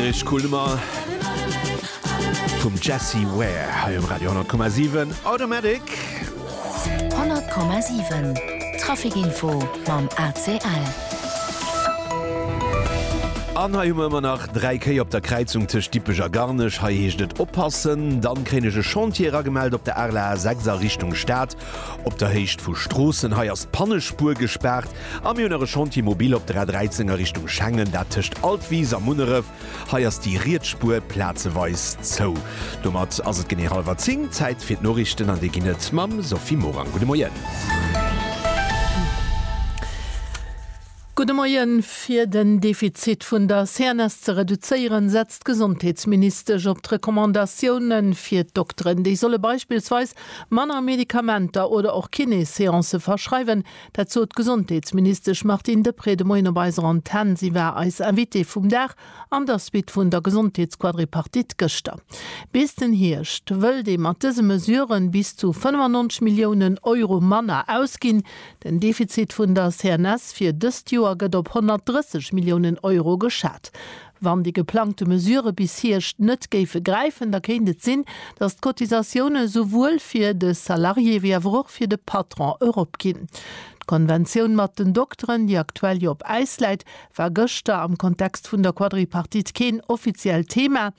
Ech cool Nummer vum Jessie Ware hei um Radio 10,7 Automatic. 100,7 Trafikinfo mam ACL. An hei hu mer ëmmer nach 3 Kéi op der Kräizung tëscht Dippech a Garnech. Hei heescht et oppassen. Dann kréien ech e Chantier eragemellt op der Arler A6 a Richtung Stad. Op der Héicht vu Stroossen, hei ass d'Pannespuer gespaart a mir hunn nach e Chantier mobile op der A 13 a Richtung Schengen, dat tëscht Altwis a Munneref. Hei ass déi riets Spuer plazeweis zou. Domat ass et genee hallwer 10, Zäit fir d'Noriichten an déi ginn et mam Sophie Morang. Gudde Moien. Gudde Moien. Fir den Defizit vun der CNS ze reduzéieren, setzt d'Gesondheetsministesch op d'Recommandatioune fir d'Dokteren. Déi solle beispillsweis Manner Medikamenter oder och Kiné-Seancë verschreiwen, dat sot d'Gesondheetsministesch Martine Deprez de Moien op eiser Antenn. Si war eis Invitée vum Dag an der Suite vun der Gesondheetsquadripartite gëschter. Bis den Hierscht wëllt ee mat dëse Mesuren bis zu 95 Milliounen Euro manner ausginn. Den Defizit vun der CNS fir dëst Joer gëtt op 130 Milliounen Euro geschat. Wann déi geplangte Mesurë bis Hierscht net géife gräifen, da kéint et sinn, datt d'Cotisatioune souwuel fir de Salarié wéi awer och fir de Patron eropginn. D'Konventioun mat den Dokteren, déi aktuell jo op Äis läit, war gëschter am Kontext vun der Quadripartite keen offiziellt Thema.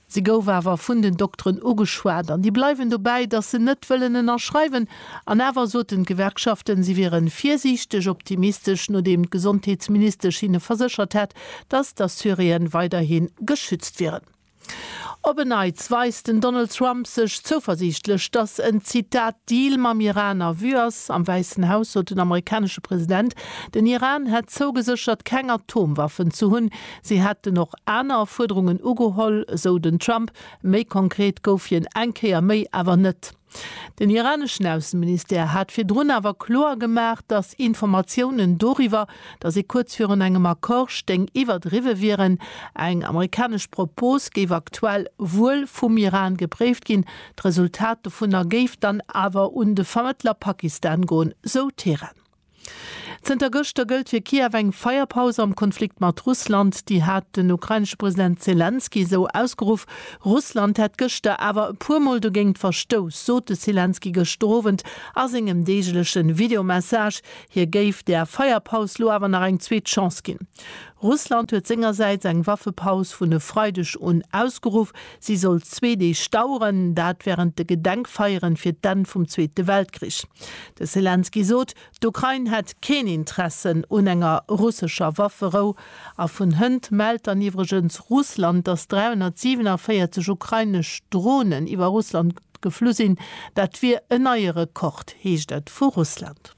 Se gouf awer vun den Dokteren ugeschwat an déi bleiwen dobäi, datt se net wëllen ënnerschreiwen. An awer soten d'Gewerkschaften, si wiere virsiichteg optimistesch, nodeem d'Gesondheetsministesch hinne verséchert hätt, datt d'Assuréen weiderhi geschützt wieren. Op en Neits weist den Donald Trump sech zouversiichtlech, datt en, Zitat, Deal mam Iran a Vue ass. Am Wäissen Haus sot den amerikanesche President, den Iran hätt zougeséchert, keng Atomwaffen ze hunn. Si hätten och aner Fuerderungen ugeholl, esou den Trump. Méi konkret gouf hien eng Kéier méi awer net. Den iraneschen Ausseministère hat virdrun awer kloer gemaach, datt Informatiounen doriwwer, datt ee kuerz virun engem Accord stéing, iwwerdriwwe wieren. Eng amerikanesch Propos géif aktuell wuel vum Iran gepréift ginn, d'Resultat dovunner géif dann awer un de Vermëttler Pakistan goen, sou Teheran. Zënter gëschter gëllt fir Kiew eng Feierpaus am Konflikt mat Russland. Déi hat den ukrainesche President Selenskyj esou ausgeruff. Russland hätt gëschter awer e puer Mol dogéint verstouss, sot de Selenskyj gëschter Owend a sengem deegleche Videomessage. Hie géif der Feierpaus lo awer nach eng zweet Chance ginn. Russland huet sengersäits eng Waffepaus vun e Freideg un ausgeruff. Si sollt zwee Deeg daueren, dat wärend de Gedenkfeieren fir d'Enn vum Zweete Weltkrich. De Selenskyj sot, d'Ukrain hätt keen Interessen un enger russescher Wafferou. A vun hënt mellt dann iwwregens Russland, datt 347 ukrainesch Dronen iwwer Russland geflu sinn. Dat wier en neie Rekord, heescht et vu Russland.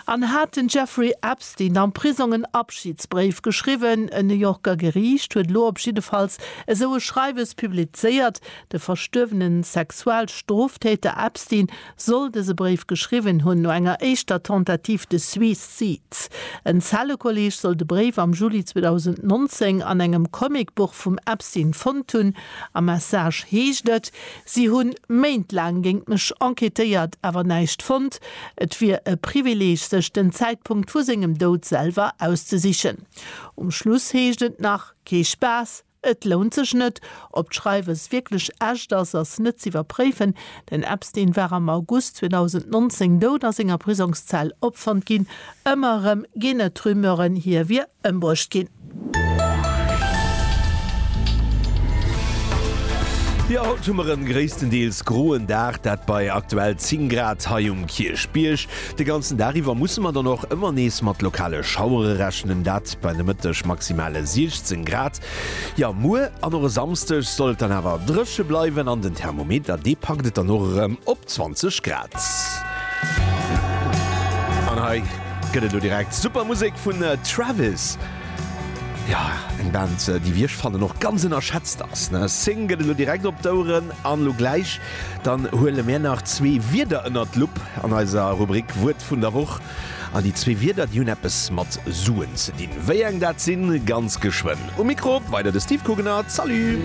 An hat den Jeffrey Epstein am Prisong en Abschidsbréif geschriwwen? E New Yorker Geriicht huet elo op jiddefalls esou e Schreiwes publizéiert. De verstuerwene Sexualstroftäter Epstein soll dëse Bréif geschriwwen hunn, no enger éischter Tentative de Suicide. En Zellekolleeg soll de Bréif am Juli 2019 an engem Comicbuch vum Epstein fonnt hunn. Am Message heescht et, Si hunn Méint laang géint mech enquêtéiert, awer näischt fonnt. Et wier e Privileeg, sech den Zäitpunkt vu sengem Doud selwer auszesichen. Um Schluss heescht et nach, Kee Spaass, et lount sech net. Ob d'Schreiwes wierklech echt ass, ass net z'iwwerpréifen. Den Epstein war am August 2019 dout a senger Prisongszell opfonnt ginn, Ëmmer erëm ginn et Rumeuren, hie wier ëmbruecht ginn. Jo, haut hu mer en gréisstendeels groen Dag, dat bei aktuell 10 Grad hei um Kierchbierg. De ganzen Dag iwwer musse mer dann och ëmmer nees mat lokale Schauere rechnen, dat bei de Mëtteg maximale 16 Grad. Jo, muer an och e Samsdeg soll et dann awer dréche bleiwen an den Thermometer, dee packt et dann och erëm op 20 Grad. An hei gëtt et elo direkt super Musek vun Travis. Jo, eng Band, déi, wéi ech fannen, och ganz ënnerschätzt ass. Sing gëtt elo direkt op d'Oueren an elo gläich dann huele mär nach zwee Wierder ënnert d'Lupp an eiser Rubrik Wuert vun der Woch. An déi zwee Wierder, déi hunn eppes mat Suen ze dinn. Wéi eng dat sinn, ganz geschwënn. Um Mikro weider de Steve Kugener. Salut!